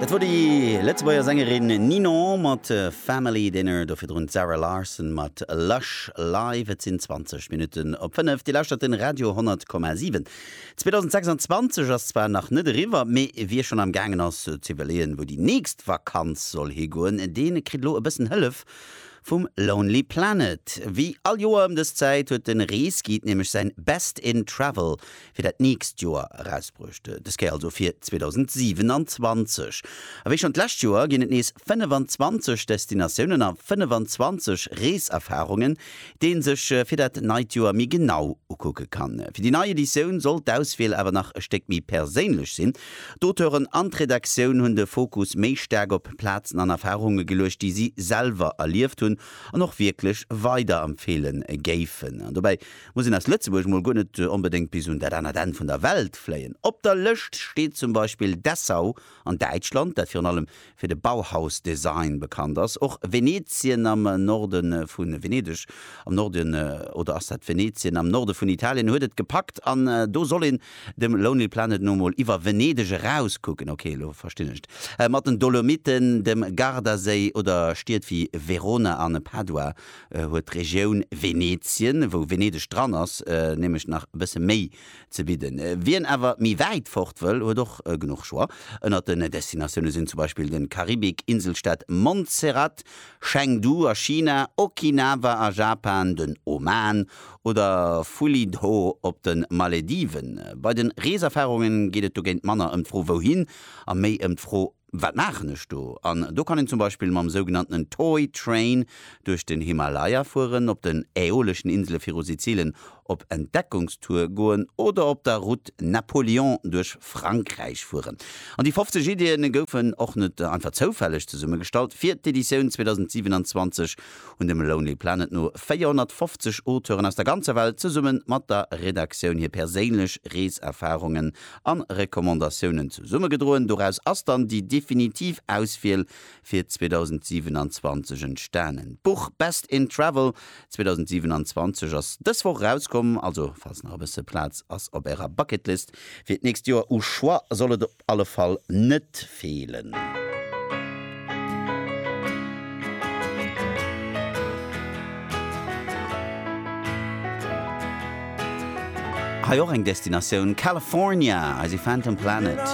Dat wor déi Lëtzebuerger Sängerin Ninon mat Family Dinner, do virdrun d'Zara Larsson mat Lush Live. Et sinn 20 Minutten op 5. Dir lauschtert de Radio 10,7. 2026 ass zwar nach net eriwwer, mee wie schonn am gaangen ass z'iwwerleeën, wou déi nächst Vakanz soll higoen, dee kritt elo e bëssen Hëllef vum Lonely Planet. Wéi all Joer ëm dës Zäit huet de Reesguide nämlech säin Best in Travel fir dat nächst Joer erausbruecht. Dës Kéier also fir 2027. A wéi schonn d'lescht Joer ginn et nees 25 Destinatiounen a 25 Reeserfarungen, déi ee sech fir dat neit Joer méi genau ukucke kann. Fir déi nei Editioun soll d'Auswiel awer nach e Stéck méi perséinlech sinn. D'Auteuren an d'Redaktioun hunn de Fokus méi staark op Plazen an Erfarunge geluecht, déi si selwer erlieft hunn an och wierklech weiderempfeele géifen. Dobäi muss een aus Lëtzebuerg mol guer net onbedéngt bis un dat anert Enn vun der Welt fléien. Op der Lëscht steet zum Beispill Dessau an Däitschland, dat virun allem fir de Bauhaus-Design bekannt ass, och Venetien am Norde vu Venedeg am Norde oder ass dat Venetien am Norde vun Italien huet et gepackt an do soll een dem Lonely Planet no mol iwwer Venedeg erauskucken, ok elo verstinn ech et, mat den Dolomiten, dem Gardaséi oder Stied wéi Verona an Padua huet d'Regioun Venetien, wou Venedeg dran ass, nämlech nach e bësse méi ze bidden. Wien awer méi wäit fort wëll, huet och genuch Choix. Ënnert den Destinatioune sinn zum Beispill de Karibik, Inselstaat Montserrat, Chengdu a China, Okinawa a Japan, den Oman oder Fulidho op de Malediven. Bei de Reeserfarunge geet et dogéint manner ëm d'Fro Wouhin? a méi ëm d'Fro Wat maachen ech do? An do kann een zum Beispill mam sougenanntenen Toy Train duerch den Himalaya fueren, op den Äoleschen Insele viru Sizilien op Entdeckungstour goen oder op der Route Napoléon duerch Frankräich fueren. An déi 50 Iddien goufen och net einfach zoufälleg zesummegestallt. Fir d'Editioun 2027 hunn dem Lonely Planet no 450 Auteuren aus der ganzer Welt zesumme mat der Redaktioun hir perséinlech Reeserfarungen a Recommandatiounen zesummegedroen. Doraus ass dann déi definitiv Auswiel fir 2027 entstanen. D'Buch Best in Travel 2027 ass dës Woch erauskomm, also falls nach e bësse Plaz ass op Ärer Bucketlist fir d'nächst Joer, u Choix soll et op alle Fall net feelen. Hei och eng Destinatioun, California, eise Phantom Planet.